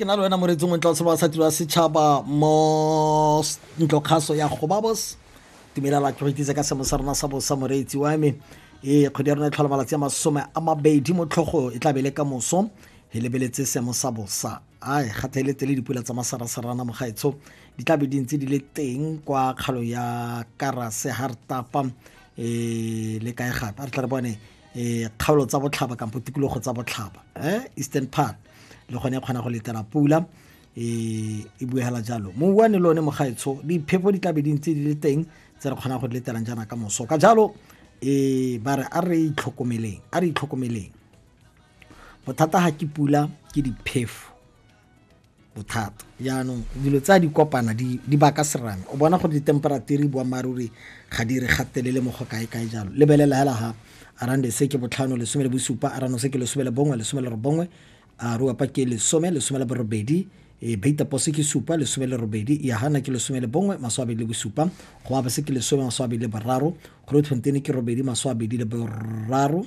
ke na le wena moreetsi ngwe tlase ba sati ba setšhaba mo ntlokgaso ya gobabos tumelela ke go itse ka semo sa rona sa bosa moreetsi wa me ee kgwedi ya rona e tlhola malatsi a masome a mabedi mo tlhogo e tlabe le ka moso e lebeletse semo sa bosa ai gata e letse le dipula tsa masarasarana mogaetsho di tlabe di ntse di le teng kwa kgalo ya karase hartapa um le kae gape a re tla re bone eh, kgaolo tsa botlhaba kampo tikologo tsa botlhaba eh, eastern part le gone e kgona go letela pula e e buegela jalo mo uane le one mogaetsho diphefo di tlabe di ntse di le teng tse re kgonang go di letelang jaana ka moso ka jalo e ba re a re itlhokomeleng a re itlhokomeleng bothata ga ke pula ke diphefo bothata jaanong dilo tsa di kopana di baka serame o bona gore ditemperature boammaaruri ga di re gatelele mo go kae kae jalo lebelela hela ha arande se ke botlhano lesome le bosupa arano se ke lesome le bongwe lesome le robongwe a ruapa ke lesome lesome le borobedi e beitapose ke supa lesome le robedi yahana ke lesome le bongwe maswabedi le bosupa go abase ke lesome maswabedi le boraro grootfonteine ke robedi maswabedi le boraro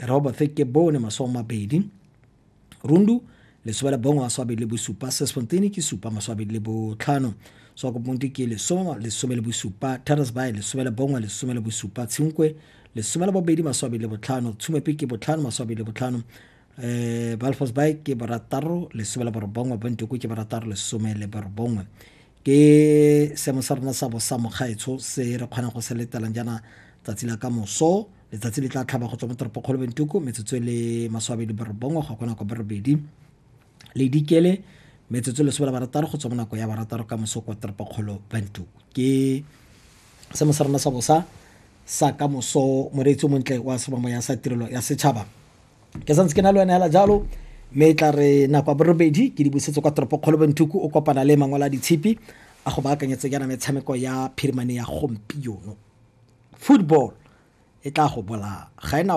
robo theke bone masome mabedi rundu lesome la bongwe masomabedi le bosupa sesfontene ke supa masomabedi le botlhano swakoponte ke lesome lesome le bosupa terasby lesome la bongwe lesome le bosupa tshinkwe lesome la bobedi masomabedi le botlhano tshumepe ke botlhano masomabedi le botlhano um eh, balfos by ke barataro lesome le borobongwe bontoko ke barataro lesome le borobongwe ke seemo sa rona sa bosa mogaetsho se re kgonang go se letelang jaana tsatsi la ka moso letsatsi le tla tlhaba go tswa mo toropokgolo bentuku metsotso e le maswabedi borobongwe go ya kwa nako borobedi le dikele metsotso lesome la barataro go tswa mo nako ya barataro ka moso kwa toropokgolo bantu ke se mo sa rona sa bosa sa ka moso moreetsi o montle wa sebamo ya sa tirelo ya setšhaba ke santse ke na le wena hela jalo mme e tla re nako ya borobedi ke di busetse kwa toropo kgolo benthuku o kopana le mangwala a ditshipi a go baakanyetse yana metshameko ya phirimane ya gompieno football e tla go bolaya ga ena